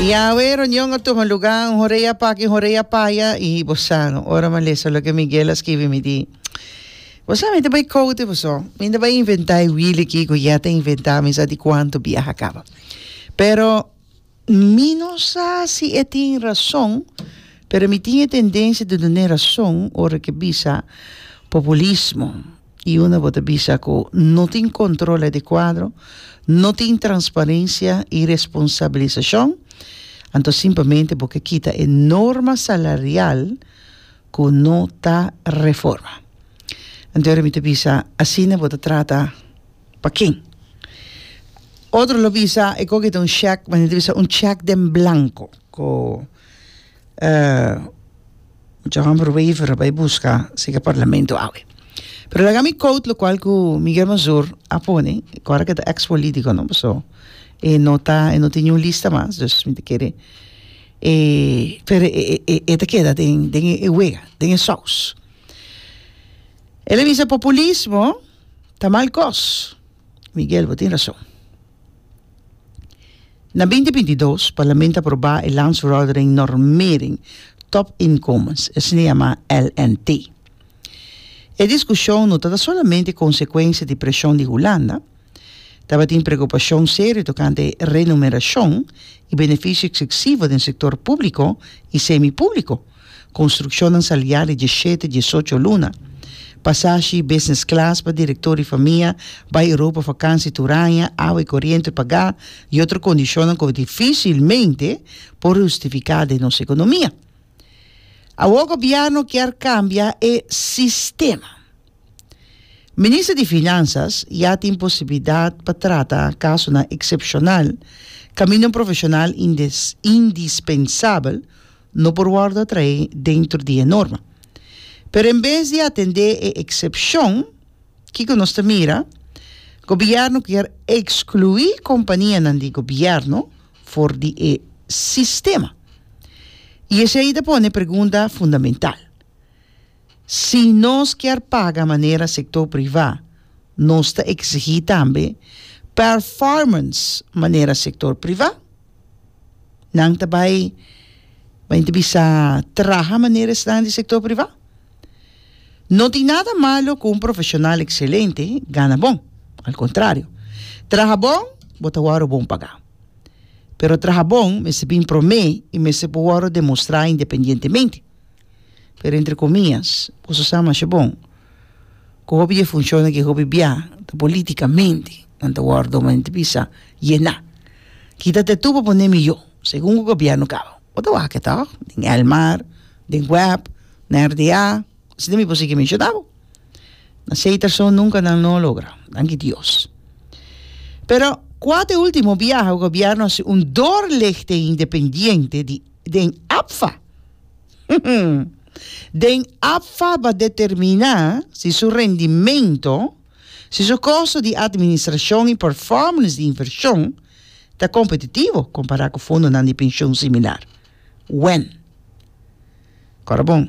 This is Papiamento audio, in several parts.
Yahweh, reunion a tuma lugá, un horei a paki, un horei a paya, i bo sa, ora mi a lesa loke Miguel a skibi mi di, Bo sa, mi ta bai kou di boso, mi no bai inventá e wiel aki ku yah ta inventá, mi sa di kuantu biaha a kaba. Pero, mi no sa si e tin rason, pero mi tin e tendensia di dun'é rason ora ke bisa populismo. Y unda bo ta bisa cu no tin control adecuado, no tin transparencia y responsabilisacion, anto simplemente bo ke kita e norma salarial cu no ta reforma. Anto mi ta bisa asina bo ta trata pa ken? Otro lo bisa e coge ta un check, ma nan ta bisa un check den blanco. mucha hòmber waiver a bai buska siga parlamento awe. Pero laga mi quote lo cual cu Miguel Mazur a pone, cora que ta ex político, no? So, e no ta, e no tiene un lista mas, dus mi te kere. E, pero e, e, e, e te keda den, den e wega, den e saus. Ele bisa populismo ta mal kos. Miguel, bo tin rason. Na binti binti dos, Parlamento a aprobá e Landsvordering Normering Top Inkomens, esei yamá LNT. E diskushon no tabata solamente konsekuensia di preshon di Hulanda, tabatin preokupashon serio tokante e renumerashon i benefisio eksiksivo den sektor públiko i semipúbliko, Construccionnan sali ya di dieshete, diesocho luna. Pasashi, business class pa director y famia, bay Europa vakansi tur aña, awa y coriente pagá y otro condicionnan cu dificilmente por hustificá den nos economia. Awo gobierno kier cambia e sistema. Minister di Finansas ya tin posibilidat pa trata kasonan eksepshonal kaminda un profeshonal indispensabel no por wòrdu a traé dentro di e norma. Pero en bes di atendé e eksepshon, kiko nos ta mira? Gobièrnu kier ekskluí kompanianan di gobièrnu for di e sistema. I esei ta pone e pregunta fundamental. Si nos kier paga manera sector priva, nos ta exigi tambe performance manera sector priva. Nan ta bay bay ta bisa traha manera esnan di sector priva. No tin nada malo cu un profesional excelente gana bon, al contrario, traha bon bo ta wordo bon paga. Pero traha bon mester bin prome y mester por wordo demostra independientemente. pero entre comillas, boso sa masha bon cu hopi di e funcionnan cu hopi bia ta politicamente nan ta wordo ma nan ta bisa yena. Kita te tur pa pone miyo segun cu gobierno caba. Bo ta wak e toh? Den Elmar, den web, na RDA, asina mi por sigui menciona bo. Na seis terson nunca nan no a logra, danki Dios. Pero cua ta e ultimo biaha cu gobierno a haci un doorlichting independiente di den APFA? Den APFA ba determiná si su rendimentu, si su kosto di administrashon i pèrfòmans di invershon ta kompetitivo kompará ku fondonan di penshon similar. Wen. Kòrda bon,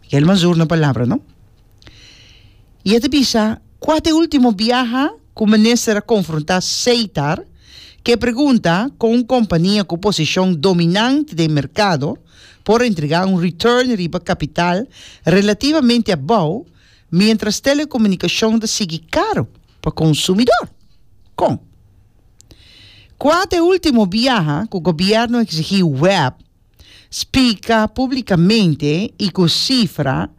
Miguel Mazur na palabra no. Y e ta bisa, Cua ta e ultimo biaha cu minister a confronta Seitar cu e pregunta con un compania cu posicion dominante den mercado por entrega un return riba capital relativamente abao mientras telecomunicacion ta sigui caro pa consumidor? Con. Cua ta e ultimo biaha cu gobierno a exigi web Splica publicamente y cu cifra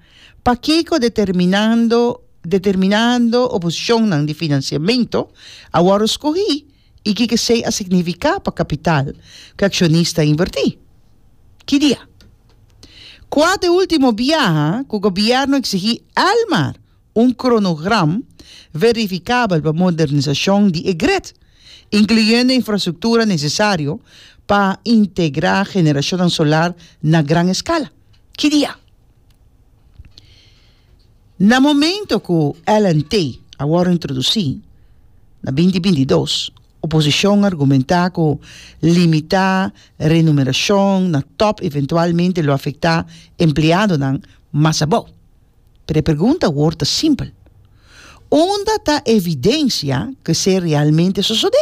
pakico determinando determinando oposicionnan di financiamento a worde scogi y kico esey a significa pa capital cu e accionista a inverti. Ki dia? Cua ta e ultimo biaha cu gobierno exigi Elmar? un kronogram verifikabel pa modernisashon di e gret, inkluyendo infrastruktura nesesario pa integrá generashonnan solar na gran eskala. Ki di a? Na momento ku LNT a wòrdu introdusí, na binti binti i dos, oposishon a argumentá ku limitá renumerashon na tòp eventualmente lo afektá empleadonan mas abou. Pero e pregunta awor ta simpel, Unda ta e evidensia ku esei realmente sosodé?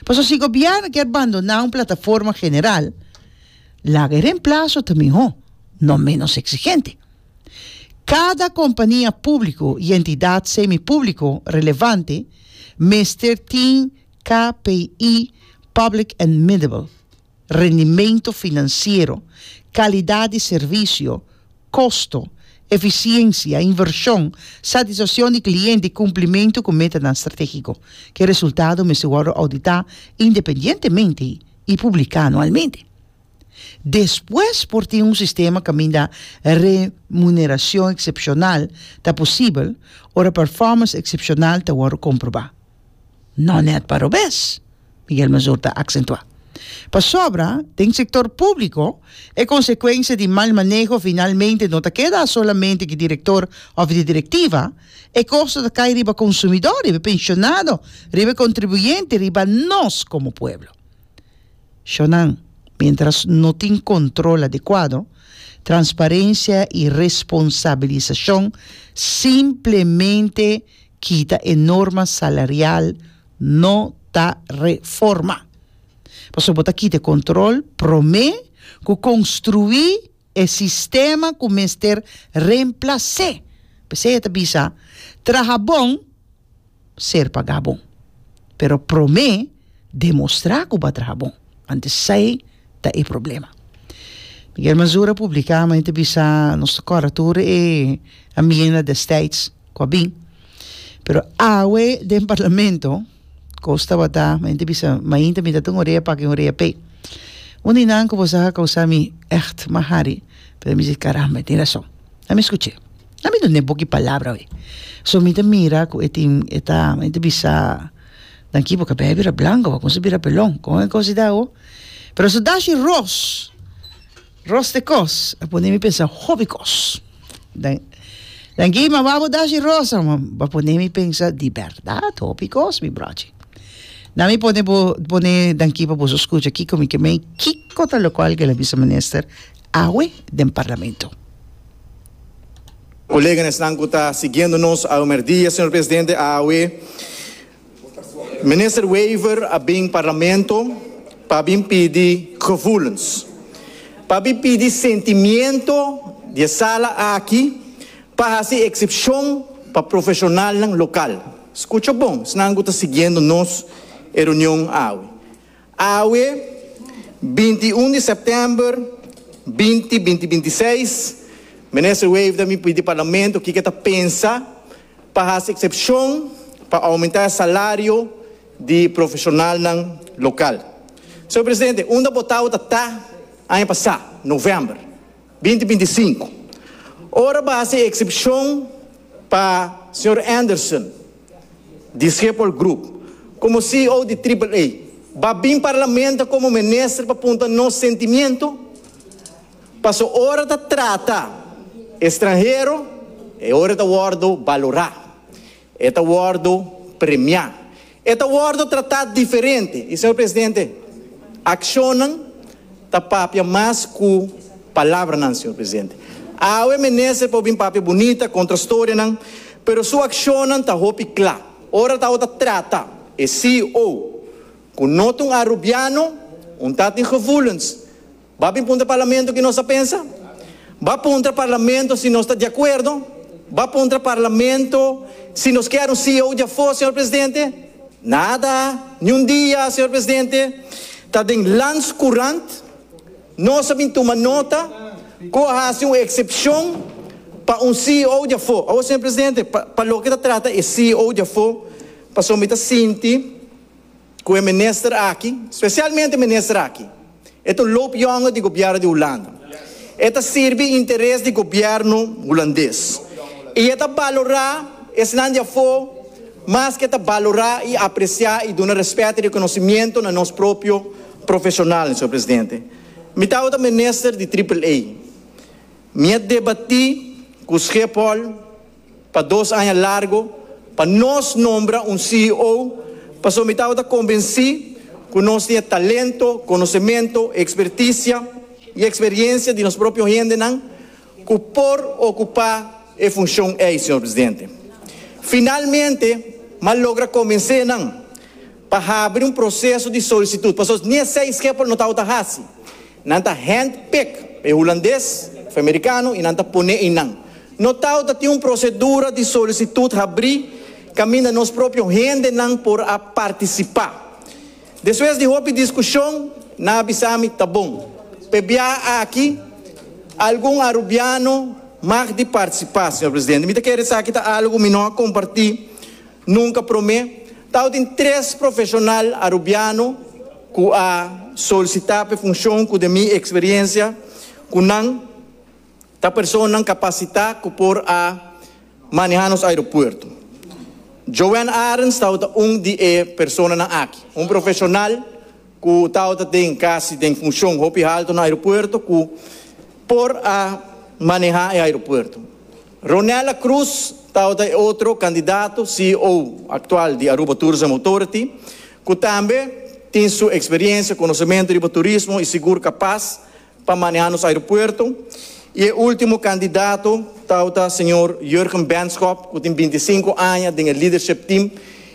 Pasobra si gobièrnu kier bandoná un plataforma general, laga e remplaso ta mihó, no ménos eksigente. Kada kompania públiko i entidat semipúbliko relevante mester tin KPI, Public and Middable, rendimento financiero, calidad di servicio, costo, eficiencia, inversion, satisfaccion di cliente y cumplimento cu metanan strategico. Ki resultado mester wordo audita independientemente y publica anualmente. Despues por tin un sistema caminda remuneracion excepcional ta posibel ora performance excepcional ta wordo comproba. No net pa robes, Miguel Mazur ta aksentuá. Pasobra, den sektor públiko, e konsekuensia di mal maneho finalmente no ta keda solamente di direktor òf di direktiva, e kosto ta kai riba konsumidó, riba e penshonado, riba e kontribuyente, riba nos komo pueblo. Shownan, miéntras no tin kontrol adekuado, transparensia i responsabilisashon simplemente kita e norma salarial no ta reforma. Pasobra bo ta kita e control prome cu construi e sistema cu mester remplace. P'esei e ta bisa, Traha bon, ser paga bon. Pero prome demostrá ku bo a traha bon, want esei ta e problema. Miguel Mazura publiká mei ta bisa nos ta kòrda tur e amienda destijds ku a bin, pero awe den parlamento kos tabata mei ta bisa mainta mi ta tin un orea pak i un orea pe. Un di nan ku bo sa a kousá mi ègt mas hari, pero mi di karamba e tin rason. Na mi skuch'é, na mi dun'é boki palabra awe, so mi ta mira ku e tin e ta mei ta bisa. Dan kibo kabea bira blango, wa konse bira pelon. Kon e kos i da awo? Pero su dashi ros, ros te kos, a pone mi pensa hopi kos. Dan, dan ki mama bo dashi ros, a a pone mi pensa di bèrdat hopi kos, mi bròchi. Na mi pone bo, pone dan kibo boso skucha kiko mi ke mei, kiko ta lokual ke la bisemenister awe den parlamento. Colega en esnan cu ta siguiendo nos ahumer dia, Señor Presidente, awe Minister Wever a bin Parlamento pa bin pidi gevoelens, pa bin pidi sentimiento di e sala aki pa haci excepcion pa profesionalnan local. Scucha bon esnan cu ta siguiendo nos e reunion awe. Awe, binti i un di sèptèmber binti binti binti i seis, Minister Wever ta bin pidi Parlamento kiko e ta pensa pa hasi eksepshon pa oumentá e salario di profeshonalnan lokal. Señor Presidente, unda botá ota ta aña pasá, novèmber. binti binti sinku, ora bo hasi e eksepshon pa señor Anderson di Schiphol Group komo CEO di Triple A, bo a bin Parlamento komo minister pa punta nos sentimiento? Paso ora ta trata estranhero e ora ta wordo balora. E ta wòrdu premiá. E ta wòrdu tratá diferente. I, señor presidente, akshonnan ta papia mas ku palabranan, señor presidente. Awe minister por bin papia bunita, konta storianan, pero su akshonnan ta hopi kla. Ora ta awe ta trata e CEO ku no ta un arubiano, un ta tin gevoelens, Ba bin puntra Parlamento ki nos ta pensa. Ba puntra Parlamento si nos ta di akuerdo. Ba puntra Parlamento si nos kier un CEO di afó, señor presidente. Nada, ni un dia, señor presidente. Ta den Landscourant nos a bin tuma nota ku a hasi un eksepshon pa un CEO di afó. Awo, señor presidente, pa loke ta trata e CEO di afó, pasobra mi ta sinti. cu e minister aki, specialmente e minister aki, e ta un loopjonge di gobierno di Hulanda. E ta sirbi interes di gobierno Hulandes y e ta balora esnan di afo mas cu e ta balora y aprecia y duna respet y reconocimiento na nos propio profesional, señor presidente. Mi tawata minister di Triple-A. Mi a debati cu Schiphol. pa dos aña largu pa nos nombra un CEO pasobra mi tabata convenci cu nos tin e talento, conocemento, experticia y experiencia di nos propio hendenan cu por ocupa e funcion ey, Señor Presidente. Finalmente, m'a logra convencenan pa habri un proseso di solisitut, pasobra ni esei e skeper no tabata hasi. Nan ta hand-pick, e Hulandes of e Amerikano, i nan ta pone einan. No tabata tin un prosedura di solisitut habrí kaminda nos propio hendenan por a partisipá. Despues di hopi diskushon, nan a bisa mi, Ta bon, p'e biaha aki algun Arubiano mag di partisipá, señor Presidente. Mi ta kere esaki ta algu mi no a kompartí. Nunka promé, tao tin tres profeshonal Arubiano ku a solisitá pa e funshon ku den mi eksperiensia ku nan ta personanan kapasitá ku por a manehá nos aeropuerto. Joanne Arends tabata un di e personanan aki, un profeshonal ku tabata den kasi den funshon hopi haltu na aeropuerto ku por a manehá e aeropuerto. Ronella Cruz tabata e otro candidato ceo actual di Aruba Tourism Authority cu tambe tin su experiencia, conocemento riba turismo y sigur capaz pa maneha nos aeropuerto. Y e ultimo candidato tabata señor Jurgen Benschop cu tin binti sinku aña den e leadership team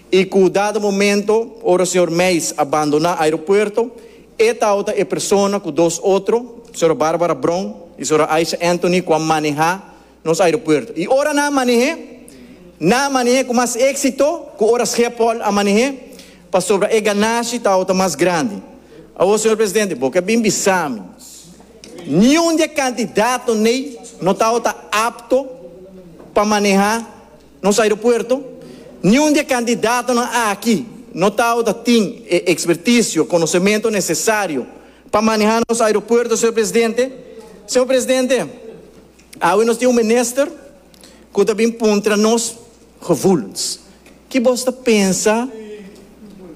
y cu dado momento ora señor Meijs a bandona aeropuerto, E tao ta e persona ku dos otro, sra. Barbara Brown i sra. Aisha Anthony, ku a manehá nos aeropuerto. I ora nan a maneh'é, nan a maneh'é ku mas éksito ku ora Schiphol a maneh'é, pasobra e ganashi tao ta mas grandi. Awo, señor presidente, bo ke a bin bisa mi niun di e kandidatnan ei no tao ta apto pa manehá Nos aeropuerto, Niun di e kandidatonan aki no tao ta tin e ekspertisio, konosementu nesesario pa manehá nos aeropuerto, señor presidente. Señor presidente, awe nos tin un minister ku ta bin puntra nos gevoelens. Ki bos ta pensa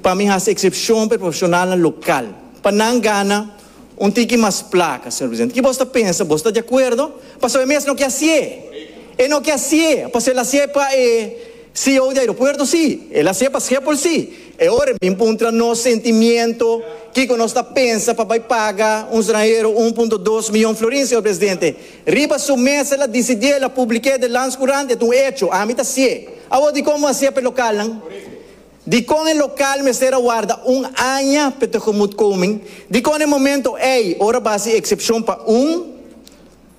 pa mi hasi eksepshon pa e profeshonalnan lokal pa nan gana Un tiki mas placa, señor presidente. Ki bos ta pensa? Bos ta di acuerdo? Pasobra e mes no ke haci'e. E no ke haci'e. Pasobra el haci'e pa e CEO di aeropuerto, sí. El haci'e pa Schiphol, sí. E ora e bin puntra nos sentimiento, kiko nos ta pensa pa bai paga un stranhero un punto dos miyon florin, señor presidente. Riba su mes el a dicidi'e, el a public'e den Landscourant, e ta un hecho. Ami ta haci'e. Awor dikon bo haci'e p'e localnan? Dikon e lokal mester a warda un aña p'e tegemoetkoming? Dikon e momento ei ora bo hasi eksepshon pa un,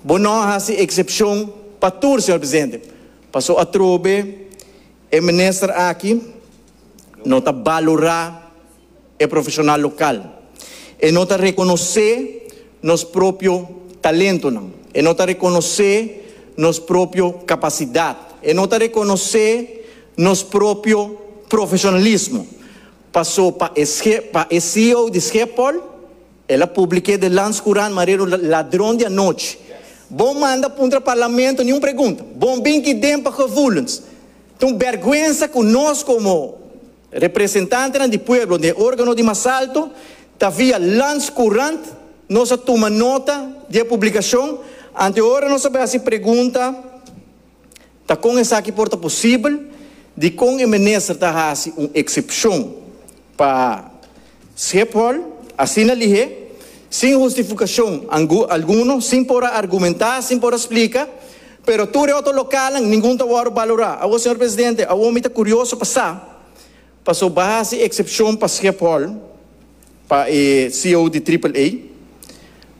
bo nò hasi eksepshon pa tur, señor presidente? Paso atrobe e minister aki no ta balorá. e profesional local. E no ta reconoce nos propio talentonan. E no ta reconoce nos propio capacidad. E no ta reconoce nos propio profesionalismo. Paso pa e pa e CEO di Schiphol el a publice den Landscourant Marero ladron di anochi. Bo manda puntra Parlamento ni un pregunta. Bo bin ki den pa gevoelens. Ta un berguensa cu nos como. Representantenan di pueblo den e organo di mas alto ta via Landscourant nos a tuma nota di e publicacion. Anto e ora nos a bai haci pregunta ta con esaki por ta posibel, dicon e Minister ta haci un excepcion pa. Schiphol asina lihé, sin hustifucashon alguno, sin por a argumentá, sin por a splica, pero tur e otro localnan ningun ta wòrdu balorá. Awo, señor Presidente, awo mi ta curioso pa sa paso ba haci excepcion pa Schiphol, pa e ceo di Triple A,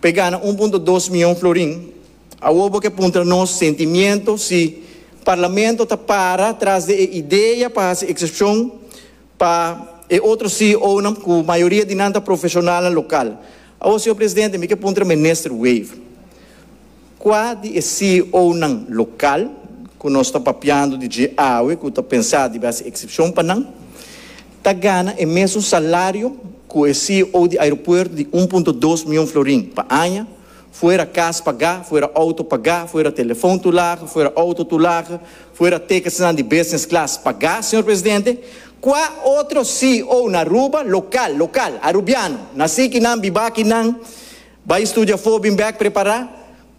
pa e gana un punto dos miyon florin. Awo bo ke puntra nos sentimiento si Parlamento ta para tras di e idea pa haci excepcion Pa e otro CEOnan cu mayoria di nan ta profesionalnan local. Awor Señor Presidente, mi ke puntra Minister Weef, cua di e CEOnan local cu nos ta papiando di dje awe cu ta pensa dibi haci excepcion pa nan, ta gana e mesun salario cu e CEO di Aeropuerto di un punto dos mion florin pa aña, Fuera cas pagá, fuera auto pagá, fuera telefon tur laga, fuera auto tur laga, fuera ticketsnan di business class pagá, señor presidente, cua otro CEO na Aruba, local, local, Arubiano, na si ki nan bibá aki nan bai studia afó bin bek prepará,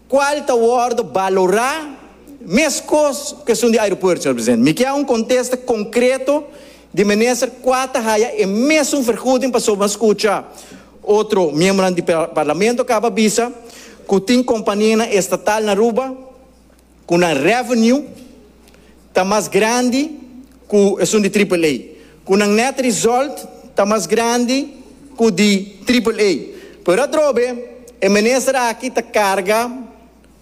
cual ta wordo balorá mescos cu esun di aeropuerto, señor presidente? Mi kier un contesta concreto di minister cua ta haya e mesun vergoeding pasobra a scucha. Otro miembronan di parlamento kaba bisa ku tin kompanianan estatal na Aruba ku nan revenue ta mas grandi ku esun di triple A, ku nan net result ta mas grandi ku di triple A. Pero atrobe e minister aki ta karga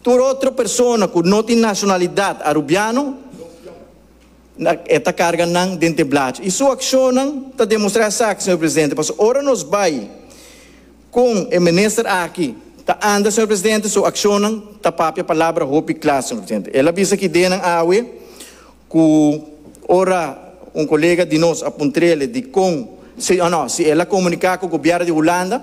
tur otro persona ku no tin nashonalidat Arubiano. E ta carga nan den te blachi. Y su accionnan ta demostra esaki, señor Presidente, pasobra ora nos bay con e Minister aki ta anda, señor Presidente, su accionnan ta papia palabra hopi cla, señor Presidente. El a bisa kidenan awe cu ora un colega di nos a puntrele dicon, si o no, si el a comunica cu Gobierno di Hulanda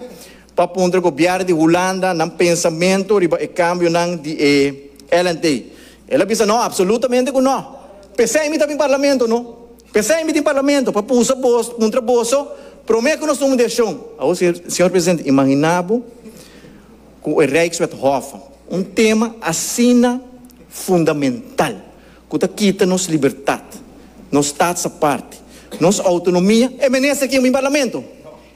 pa puntra Gobierno di Hulanda nan pensamento riba e cambionan di e LNT. El a bisa, No, absolutamente cu no. P'esey mi ta bin Parlamento, no. P'esey mi tin Parlamento, pa pusa boso cuntra boso prome cu nos tuma un decision. Awor, Señor Presidente, imagina bo cu e Rijkswet Hof, un tema asina fundamental, cu ta kita nos libertad, nos Staatsaparte, nos autonomia, e minister kin bin Parlamento?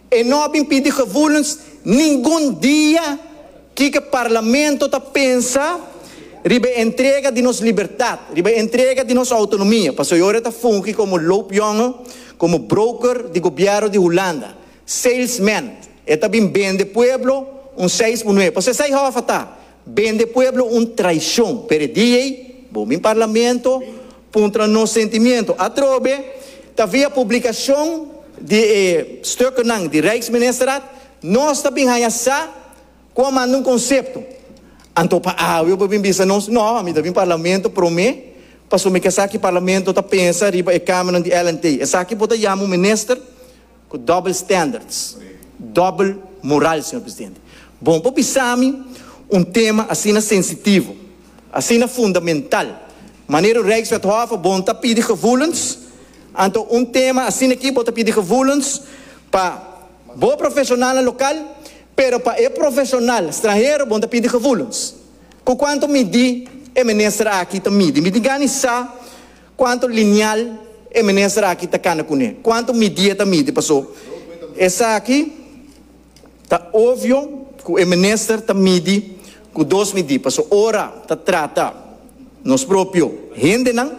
E no a bin pidi gevoelens ningun dia. Kiko Parlamento ta pensa riba e entrega di nos libertad, riba e entrega di nos autonomia? Pasobra e ora ta fungi como loopjongen, como broker di Gobierno di Hulanda, salesman. E ta bin bende pueblo un seis por nuebe. Pasobra esai hof a ta Bende pueblo un traicion, pero e dia ey bo min parlamento puntra nos sentimiento. Atrobe ta via publicacion di e stukennan di Rijksministerraad nos ta bin haya sa cu a manda un concepto. Anto pa awe bo bin bisa nos? No, mi ta bin parlamento prome pasobra mi ke sa ki parlamento ta pensa riba e cameranan di LNT. Esaki bo ta yama un minister? Cu double standards, double moral, Señor Presidente. Bon por bisa mi, un tema asina sensitivo, asina fundamental, manera Rijkswethof a bon ta pidi gevoelens, anto un tema asina aki bo ta pidi gevoelens pa bo profesionalnan local, pero pa e profesional stranhero bon ta pidi gevoelens? Cu cuanto midi e Minister aki ta midi? Mi tin gana i sa. Cuanto lineal e minister aki ta cana cune? Cuanto midie ta midi? Paso esaki ta obvio cu e minister ta midi cu dos midi. Paso ora ta trata nos propio hendenan,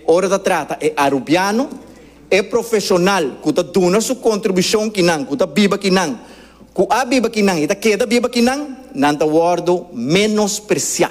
ora ta trata e Arubiano, e profesional cu ta duna su contribucion kinan cu ta biba kinan, cu a biba kinan y ta keda biba kinan, nan ta wordo menosprecia.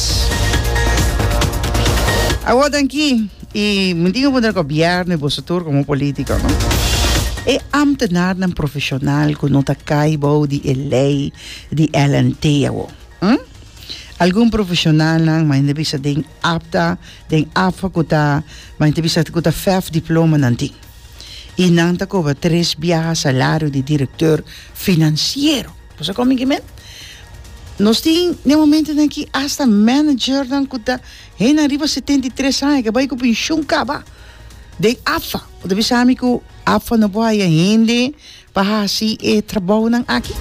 Awor tan ki i mi tin wonder gobièrnu i boso tur komo polítiko no. E ámtenarnan profeshonal ku no ta kai bou di e lei di LNT awor. Hm? Algun profeshonalnan mai ta bisa den apta, den afo ku ta mai ta bisa ku ta fèf diplomanan tin. I nan ta kobra tres biaha salario di direktor finansiero. Bo sa kominke men? Nos tin den momentonan aki asta managernan ku ta henda riba setenta i tres aña ke bai ku penshun kaba den AFA. Bo ta bisa mi ku AFA no por haya hende pa hasi e trabounan aki?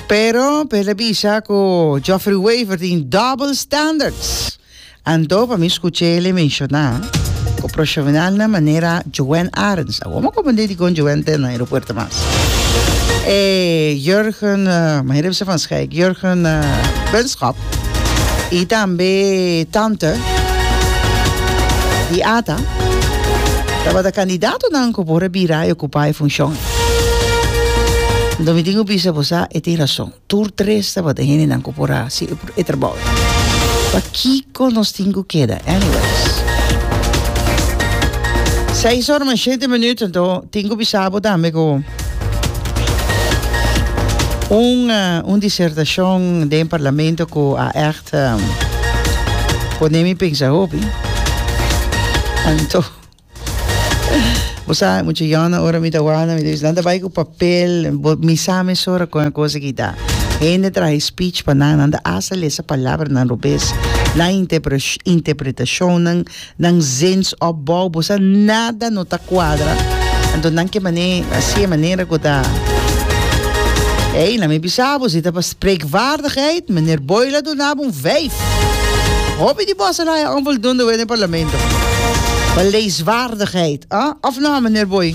Pero, por e ta bisa ku Geoffrey Wever tin double standards. Anto pa mi skuché elé menshoná ku proshonalnan manera Joan Arends, awor mi a konprendé dikon Joan ta na aeropuerto mas. E Jurgen, manera bisé van Schijk, Jurgen Benschop i tambe Tante di Ata tabata kandidatonan ku por a bira i okupá e funshon. Anto mi tin ku bisa, bo sa e tin rason. tur tres tabata hendenan ku por hasi e trabou. Pa kiko nos tin ku keda? Anyways. Seis ora mas shete minuut, anto tin ku bisa bo tambe ku un un disertashon den parlamento ku a ègt pone mi pensa hopi. Anto Bo sa, mucha yona ora mi ta wana, mi ta bisa, nan ta bai ku papel, bo, mi sa mesora kon e kosa ki ta. Hende traha e speech pa nan, nan ta hasta lesa palabranan robes, nan interpres, interpretashonnan, nan zensopbou, bo sa nada no ta kuadra. Anto nan ke manera, si e manera ku ta, ey, laat mi bisa bo si ta pas. Preekvaardigheid, Meneer Boyla a dunabo un vijf. Hopi di boso la a onvoldoende wet den Parlamento. Beleidsvaardigheid, a? Of no, Meneer Boy?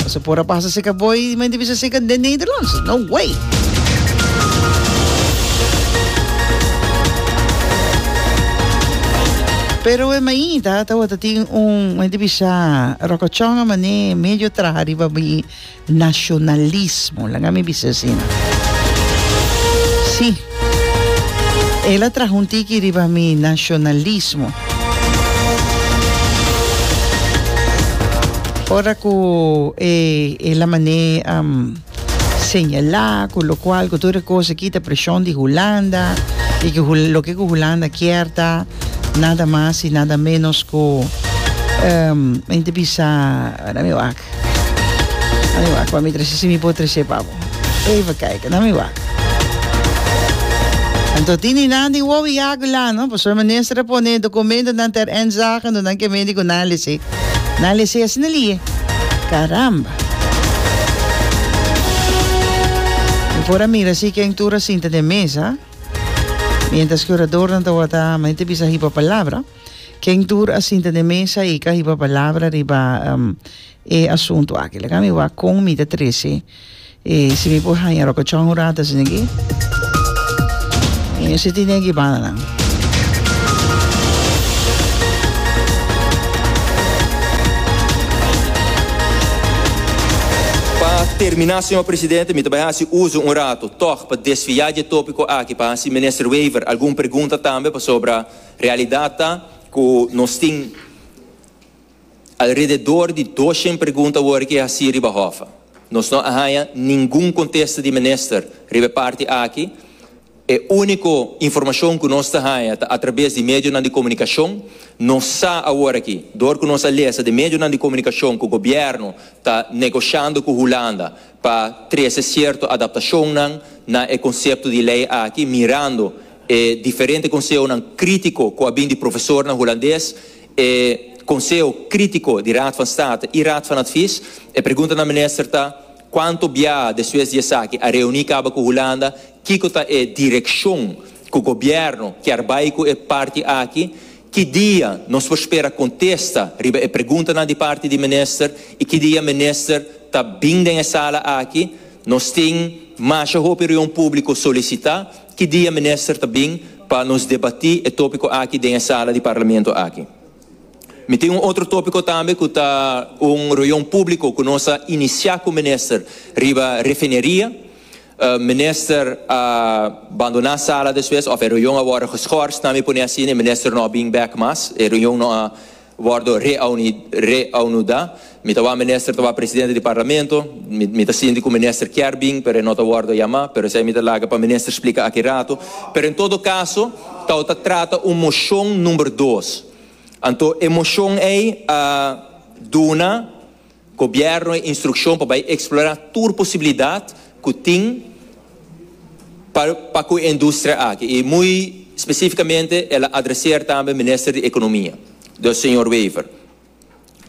Boso por a pasa seka Boy di mente bisa seka den Nederlands? No way! Pero e mainta tawata tin un, mente bisa, rokochon a mané medio traha riba mi. Nacionalismo, laga mi bisa asina. Sí, el a traha un tiki riba mi nacionalismo. Ora cu e, el a mané a señalá cu locual, cu tur e cos a kita presion di Hulanda, y cu Hul, loke cu Hulanda kier ta nada mas y nada menos cu, em, mi ta bisa, wak. Nami wak, pa mi trece si mi por trece pa bo. Even kijken, nami wak. Anto tin di nan di Wowie Yagu la no, pasobra minister a pone documentonan ter inzage, anto nan ke medi ku nan lese. Nan lese asina lie. Caramba! Mi por a mira si ken tur a sinta den mesa, mientras ke oradornan tabata, mane ta bisa hipo palabra. Ken tur a sinta den mesa i ka hiba palabra riba um, e asuntu aki? Laga mi wa kon mi ta trece. E, si mi por haña rokochon un rato, sin aquí. E, si tin den ki banda nan. Pa terminá, señor presidente, mi ta bai hasi uso un rato tòg pa desviá dje tópiko aki, pa hasi Minister Wever algun pregunta tambe pasobra, Realidat ta ku nos tin alrededor di doshen pregunta wor ke hasi riba hof. Nos no a haña ningun kontesta di minister riba e parti aki. E úniko informashon ku nos ta haña ta atrabes di medionan di komunikashon. Nos sa awor aki, dor ku nos a lesa den medionan di komunikashon ku gobièrnu ta negoshando ku Hulanda pa trece cierto adaptacionnan na e concepto di ley aki, mirando e diferente consehonan critico cu a bin di profesornan Hulandes, e Conseho Critico di Raad van State y Raad van Advies. E pregunta na minister ta, Cuanto biaha despues di esaki a reuni caba cu Hulanda? Kico ta e direccion cu Gobierno kier bay cu e parti aki? Ki dia nos por spera contesta riba e preguntanan di parti di Minister y ki dia Minister ta bin den e sala aki? Nos tin masha hopi reun publico solicita, ki dia Minister ta bin pa nos debati e topico aki den e sala di Parlamento aki? Mi tin un otro topico tambe cu ta un reun publico cu nos a inicia cu Minister riba refineria. Minister a bandona sala despues of e reunion a wordo geschorst, na mi pone así en e minister no a bin back mas, e reunion no a wordo reanuda. Mi ta wou minister ta wou presidente di Parlamento, mi ta sinti cu minister kier bin pero e no ta wordo yama, pero esey mi ta laga pa minister splica aki rato. Pero en todo caso ta wou ta trata un mocion number dos, anto e mocion ey a duna. Gobierno e instruccion pa bay explora tur posibilidad cu tin pa pa cu e industria aki y muy specificamente el a adrecer tambe Minister di Economia dus Señor Wever.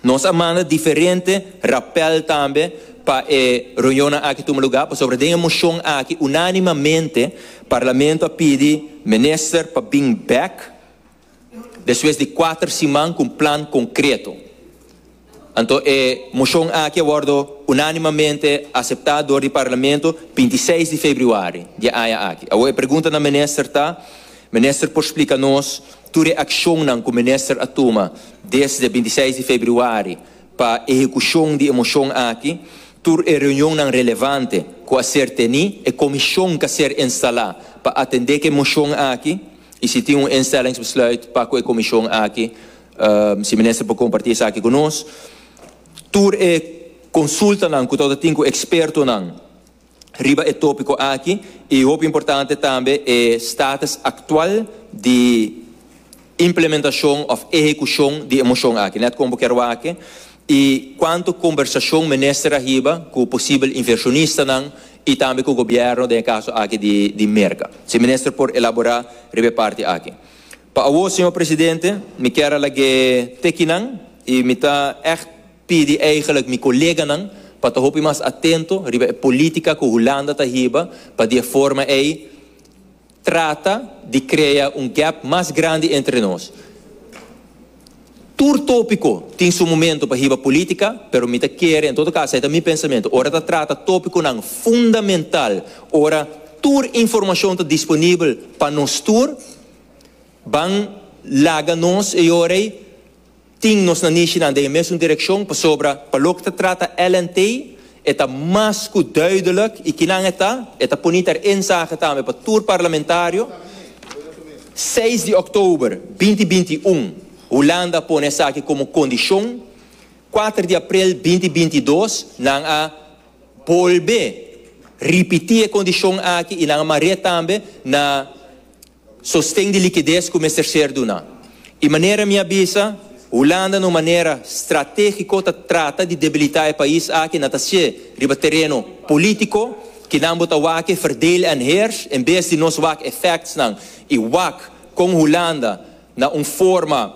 Nos a manda diferente rapel tambe pa e reunionnan aki tuma lugar pasobra den e mocion aki unanimamente Parlamento a pidi Minister pa bin back, Despues di kuater siman ku un plan konkreto, anto e moshon aki a wòrdu unánimamente aseptá dor di Parlamento binti i seis di februari di e aña aki. Awor e pregunta na Minister ta, Minister por splika nos tur e akshonnan ku Minister a tuma desde binti i seis di februari pa ehekushon di e moshon aki, tur e reunionnan relevante ku a ser tení, e komishon ku a ser instalá pa atendé ku e moshon aki? y si tin un instellingsbesluit pa cu e comision aki, si Minister por comparti esaki cu nos, tur e consultanan cu tabata tin cu expertonan riba e topico aki y hopi importante tambe e status actual di implementacion of ehecucion di e motion aki, net como bo kier wak, I cuanto conversacion mester a hiba cu posibel inversionistanan y tambe cu gobierno den e caso aki di Merca? Si Minister por elabora riba e parti aki. Pa awo, Señor Presidente, mi kier a lag'e tekinan y mi ta echt pidi eigenlijk mi coleganan pa ta hopi mas atento riba e politica cu Hulanda ta hiba pa di e forma ey Trata di krea un gèp mas grandi entre nos. Tur tópiko tin su momentu pa hiba pulítika, pero mi ta kere, en todo kaso ei ta mi pensamentu, ora ta trata tópikonan fundamental, ora tur informashon ta disponibel pa nos tur, ban laga nos e ora ei. Tin nos na Nishinan den e mesun direkshon pasobra pa loke ta trata LNT e ta mas ku duidelek i kinan e ta, e ta poni ter e nsake tambe pa tur parlamentario, seis di òktober binti binti i un Hulanda a pone esaki komo kondishon, kuater di aprel binti binti i dos nan a bolbe ripití e kondishon aki i nan a mar'é tambe na. Sosten di likides ku mester ser duná. I manera mi a bisa, Hulanda na un manera stratégiko ta trata di debilitá e pais aki na ta hasié riba tereno polítiko, kinan bo ta wak e verdeel en heers en bes di nos wak e factsnan i wak kon Hulanda na un forma,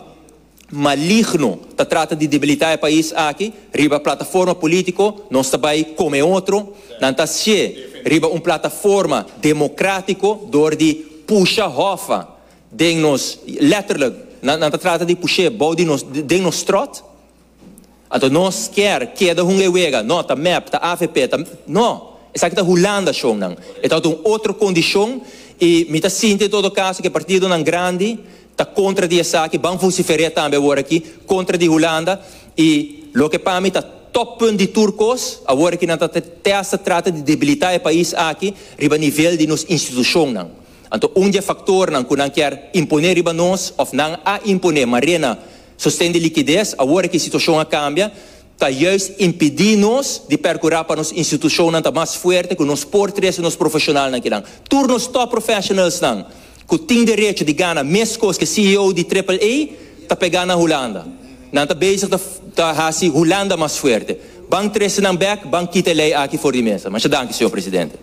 maligno ta trata di debilitá e pais aki riba plataforma polítiko, nos ta bai kome otro, nan ta sie riba un plataforma demokratiko dor di pusha hòfa den nos, lètterlik nan ta trata di push'é bou di nos, den nos tròt. Anto nos kier keda hun e wega? No, ta mep, ta avp, ta. No! Esaki ta Hulanda shownan. E tabata un otro kondishon i mi ta sinti en todo kaso ke partidonan grandi ta kontra di esaki, ban vusifer'é tambe awor aki kontra di Hulanda i loke pa mi ta tòppunt di tur kos, awor aki nan ta testa trata di debilitá e pais aki riba nivel di nos institushonnan. Anto un di e faktornan ku nan kier impon'é riba nos òf nan a impon'é, mare'na, Sosten di likides, Awor ki situashon a kambia ta juist impidi nos di perkurá pa nos institushonnan ta mas fuerte ku nos por trese nos profeshonalnan kinan. Tur nos top professionalsnan ku tin derecho di gana meskos ke CEO di Triple-A ta pegá na Hulanda. Nan ta bezig ta hasi Hulanda mas fuerte. Ban trese nan bèk, ban kita e lei aki for di mesa. Masha danki, señor presidente.